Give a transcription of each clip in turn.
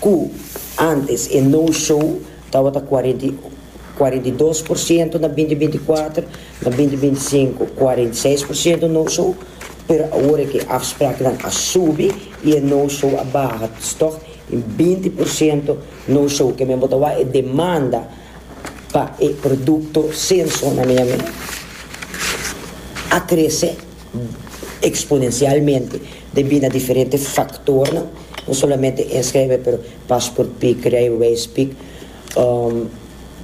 Cu antes e no show tabata cuarenta y cuarenta y dos por ciento na binti binti cuater, na binti binti cinco cuarenta y seis por ciento no show, pero awor e ke afspraaknan a subi y e no show a baha stock in binti por ciento no show ke men bo ta wak e demanda pa e producto Senso na Miami a crece. exponencialmente debí na diferente factornan, no solamente en schrijven pero passport pic, rijbewijs pic,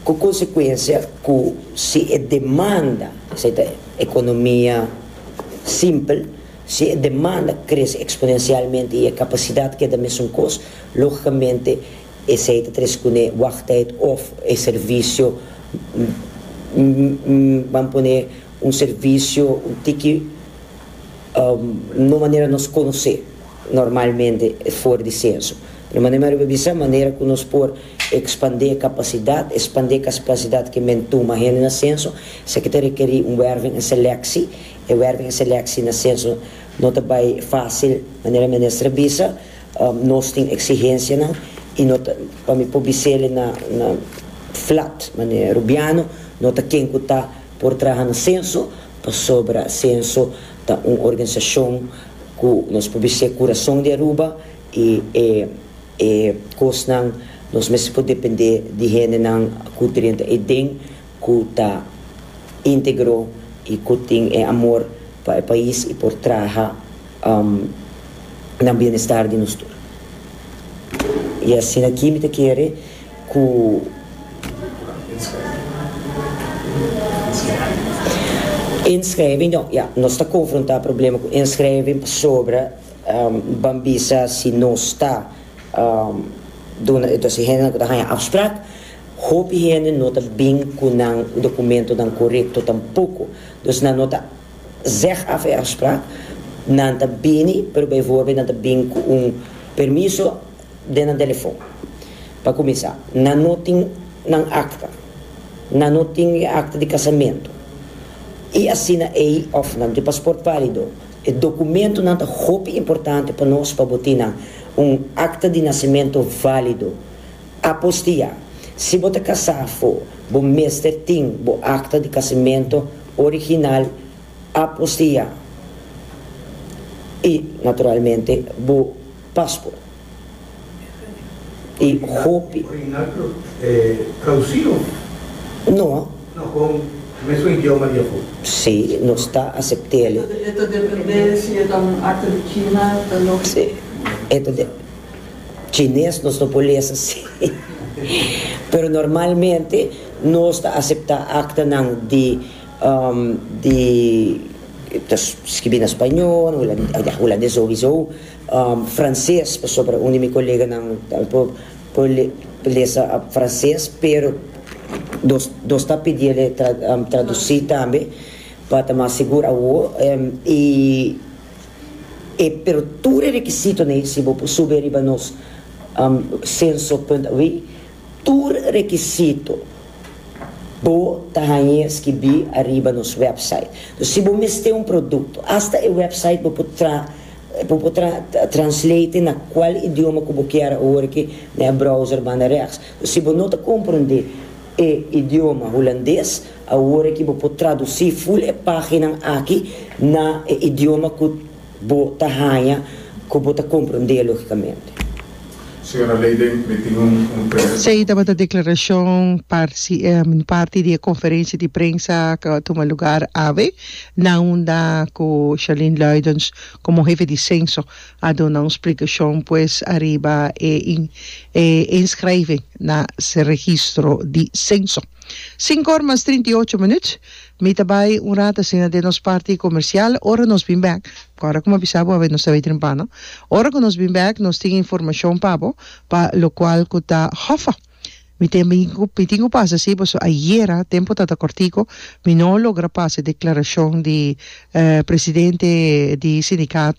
cu consecuencia cu si e demanda, esei ta economia simpel, si e demanda crece exponencialmente y e capacidad keda mesunkoos, logicamente esei ta tres cune wachttijd of e servicio, ban pone Un servisio un tiki no manera nos konos'é normalmente e for di senso. Pero manera mi ariba bisa, manera ku nos por ekspandé e kapasidat, espandé e kapasidat ke men tuma hende na senso, esaki ta rekerí un wèrving en seleksi. E wèrving en seleksi na senso no ta bai fásil, manera minister a bisa. Nos tin eksigensianan i no ta, pa mi por bis'é na flat manera rubiano, no ta ken ku ta. Por traha na Censo, pasobra Censo ta un organisacion cu nos por bis'e curason di Aruba y e e cosnan nos mester por depende di hendenan cu drenta e den cu ta integro y cu tin e amor pa e pais y por traha na bienestar di nos tur. Y asina aki mi ta kere. ku inschrijving no ya nos ta konfrontá problema ku inschrijving pasobra ban bisa si nos ta duna entonse hende ku ta haña afspraak hopi hende no ta bin ku nan dokumentonan korekto tampoko dus nan no ta zeg af e afspraak nan ta bini pero beivoorbeeld nan ta bin ku un permiso den nan telefon. Pa kuminsá, nan no tin nan akta. Nan no tin e akta di kasamentu i asina ei òf nan no tin paspòrt válido. E dokumentunan ta hopi importante pa nos pa bo tin nan un akta di nasementu válido. Apostiá, Si bo ta kasá afó, bo mester tin bo akta di kasamentu original apostiá i, naturalmente, bo. Pasco. I hopi. Orinaclo e traducido? No. No, con mesmo idioma di afo. Si, nos ta acept'el. E ta depende si e ta un acta di China, ta loke. Si, e ta depende. Chines nos no por lesa asi. Pero normalmente nos ta acepta actanan di di ta skibi na spañol, hulandes obi so, franses pasobra un di mi koleganan tal por por lesa franses pero nos nos ta pidi el e tradusi tambe pa ta mas sigur awo i e pero tur e rekisitonan si bo por subi ariba nos senso punt awe. Tur rekisito bo ta hañ'é skibí ariba nos wèpsait. Dor si bo mester un produkto, asta e wèpsait bo por tra bo por tra translate na kual idioma ku bo kier awor aki na e browser banda rèks. Dor si bo no ta komprondé e idioma hulandes, awor aki bo por tradusí ful e páginan aki na e idioma ku Bo ta haña ku bo ta komprendé lógikamente. Señora Leyden, mi tin un pre. Esei tabata deklarashon parti di e konferensia di prensa ku a tuma lugar awe na unda ku Charlene Luijtdens komo hefe di senso a duna un splikashon pues ariba e inskrijving na se registro di senso. Sinku or mas trinta i ocho minut Mi ta bai un rat asina den nos parti comercial ora nos bin bek. Ora cu mi a bisa bo a nos ta bai trimpa no. Ora cu nos bin bek nos tin informacion pa bo pa locual cu ta hofa. Mi tin mi tin cu pasa si pasobra ayera tempo ta ta cortico mi no logra pasa e declaracion di presidente di sindicato.